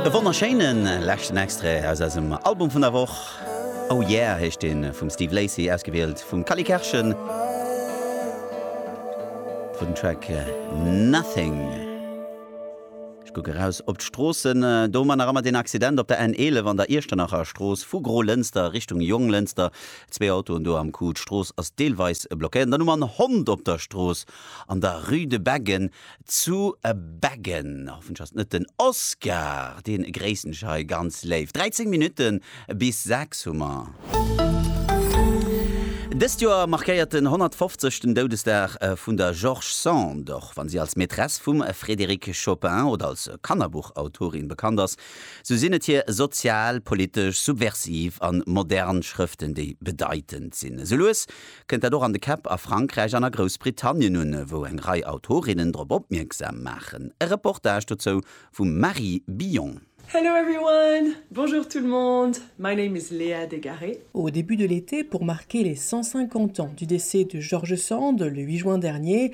E wonnerschéinen leschten Extrait aus eisem Album vun der Woch. Oh Yeah heescht deen, vum Steve Lacy, ausgewielt vum Cally Kerschen, fir den Track Nothing. Ech kucke raus op d'Stroossen, do hu mer nach ëmmer deen Accident op der N11 an der Iechternacher Strooss, vu Gro-Lënster Richtung Jonglënster, zwee Autoen do am Coup, d'Strooss ass deelweis blockéiert. An dann hu mer en Hond op der Strooss an der Rue de Beggen. zu beggen. Hoffentlech ass et net den Oscar, dee gréissen ech hei ganz léif. 13 Minutte bis 6 hu mer. Dëst Joer markéiert den 150. den Doudesdag vun der George Sand. Och wann si als Maîtresse vum Frédéric Chopin oder als Kannerbuchautorin bekannt ass, sou sinn et hir sozial, politesch, subversiv an modern Schrëften, déi bedeitend sinn. Esou lues kënnt dat och an de Käpp a Frankräich an a Groussbritannien un, wou eng Rei Autorinnen drop opmierksam maachen. E Reportage dozou vum Marie Billon. Hello everyone! Bonjour tout le monde! My name is Léa Dégarré. Au début de l'été pour marquer les 150 ans du décès de George Sand, le 8 juin dernier,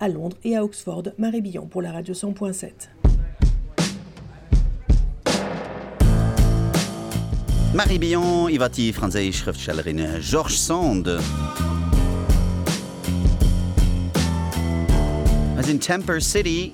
à Londres et à Oxford, Marie Billon pour la radio 100.7. D'Marie Billon iwwer déi franséisch Schrëftstellerin George Sand. Hei sinn Temper City.